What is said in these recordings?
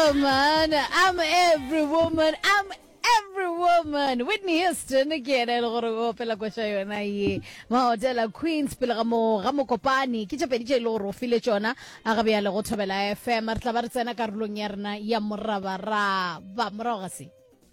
woman. I'm every woman. I'm every woman. Whitney Houston ke ena e le gore o opela kwa tša yona ye. Mahotela Queens pele ga mo ga mokopane ke tše pedi tše e le gore o file tšona a ga bjale go thobela FM. Re tla ba re tsena karolong ya rena ya morabaraba morago ga se.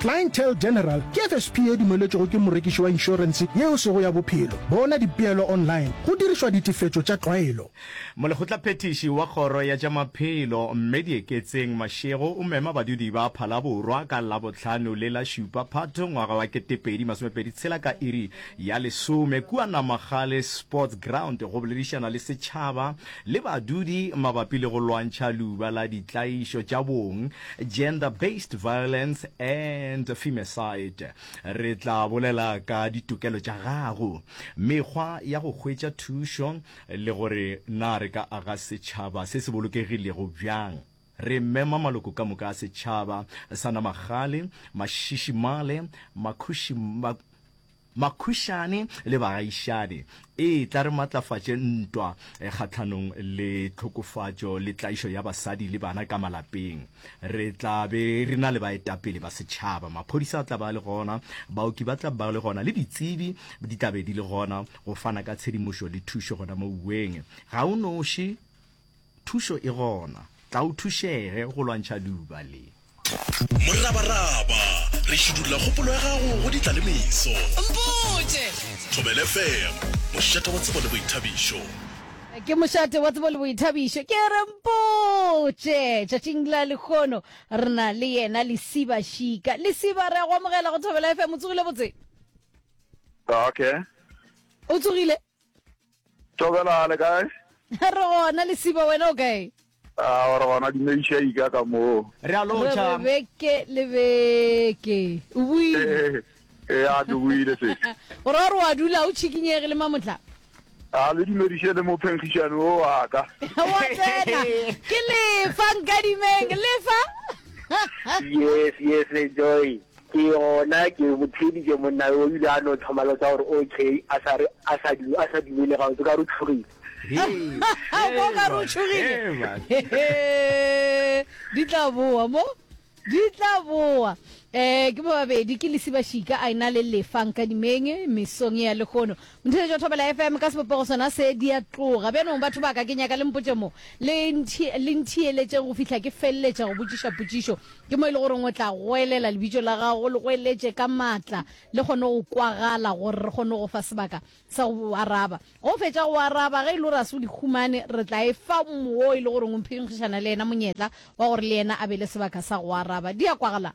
Clientele General ke FSP e dumeletšwego ke morekiši wa inšorense yeo sego ya bophelo. Bona dipeelo online go dirišwa ditefetšo tša tlwaelo. Molekgotlaphethiši wa Kgoro ya tša Maphelo, Mme Dieketseng Mashego o mema badudi ba Phalaborwa ka Labohlano le la Šupa Phatho ngwaga wa ketepedi masomepedi tshela ka iri ya lesome kua Namagale Sports Ground go boledišana le setšhaba le badudi mabapi le go lwantšha luba la ditlaišo tša bong Gender Based Violence and Femicide. Re tla bolela ka ditokelo tša gago, mekgwa ya go hwetša thušo le gore na re ka aga setšhaba se se bolokegilego bjang. Re mema maloko ka moka a setšhaba sa Namagale, Mashishi Male, Makhushi, Makhušane le bagaišane, e tla re matlafatše ntwa kgahlanong le tlhokofatšo le tlaišo ya basadi le bana ka malapeng. Re tla be re na le baetapele ba setšhaba, maphodisa a tla ba a le gona, baoki ba tla ba le gona le ditsebi di tla be di le gona go fana ka tshedimošo le thušo gona moweng ga o noši. Thušo e gona. Tla o thušege go lwantšha luba le. Morabaraba, re šidulla kgopolo ya gago go ditlalemeso. Mpotše! Thobele FM, mošate wa tsebo le boithabišo. Ke mošate wa tsebo le boithabišo. Ke re mpotše! Tšatšing la lekgono re na le yena Lesiba Šika. Lesiba, re a go amogela go Thobela FM. O tsogile botse? Okay. O tsogile? Tobela le kae? Re gona lesiba wena o kae? Ah, re gona di meisha ika ka mo. Re a lotša. Re beke le beke. O buile. Eh, eh, eh a ke buile se. Gore wa re wa dula o chikinyege le mamotla. A le dumediše le mo phenkgišane o wa ka. Wa tsena. Ke lefa nkadimeng, lefa. Yes, yes, enjoy. Ke gona ke mo theeditše monna yo, o ile a no thoma lotsa gore OK, a sa re a sa du, a sa dumele gabotse ka re o tšhogile. Go ka re o tšhogile. Di tla boa mo. Di tla boa. Eh, ke ba babedi ke lesibašika a ena le lefa nkadimeng mesong ya lehono. Ntheetša o thobela FM ka sebopego sona se, di a tloga. Bjano, batho ba ka, ke nyaka le mpotše mo, le nthi, le ntheeletšeng go fihla ke feleletša go botšiša potšišo. Ke mo e le goreng o tla goelela Lebitšo la Gago, o le goeletše ka matla, le kgone go kwagala, gore re kgone go fa sebaka sa go O araba. Ge O fetša go O araba, ge e le gore ga se o di humane, re tla e fa mo wo e le goreng o mphinkgišana le yena monyetla wa gore le yena a be le sebaka sa go O araba. Di a kwagala?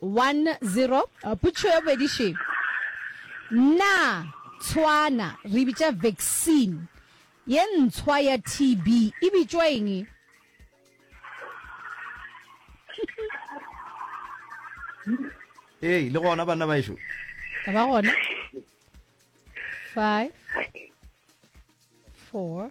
One zero, potšišo ya bobedi še, Na tshwana re bitša vaccine ye ntshwa ya TB e bitšwa eng? Ee, le gona banna baešo. Ka ba gona. Five, four,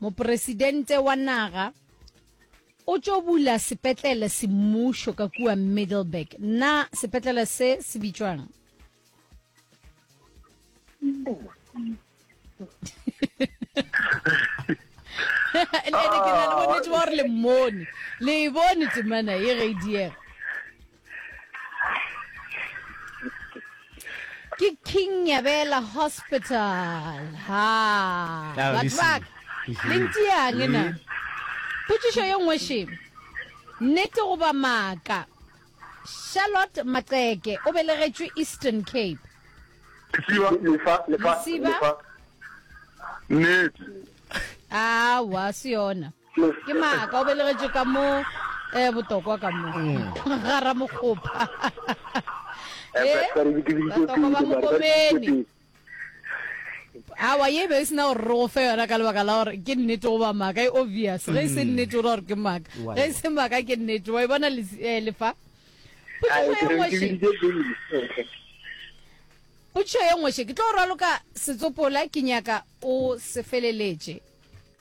Mopresidente wa naga o tšo bula sepetlele semmušo ka kua Middleburg. Na sepetlele se se bitšwang? ene ke na le bonnete ba gore le mmone le e bone temana ye ge e diega ke king nyabela hospital ha Now batho listen. ba ka le ntiang ena potšišo ye nngwe še nnete goba maaka charlotte maqeke o belegetšwe eastern cape Lesiba, lefa, lefa, Lesiba. lefa. Nnete. awa se yona ke maaka o belegetše ka mo eh botokwa ka mo ga ramokgopa Eh, batokwa ba mokopeni awa ye be e sena gore re go fe yona ka lebaka la gore ke nnete goba maaka e obvious ge e se nnete o ra gore ke maaka Why? ge e se maaka ke nnete wa e bona les- eh, lefa Ai, Potšišo ke e re nngwe ke še- biditše pele. potšišo ye nngwe še ke tlo go raloka setsopola ke nyaka o se feleletše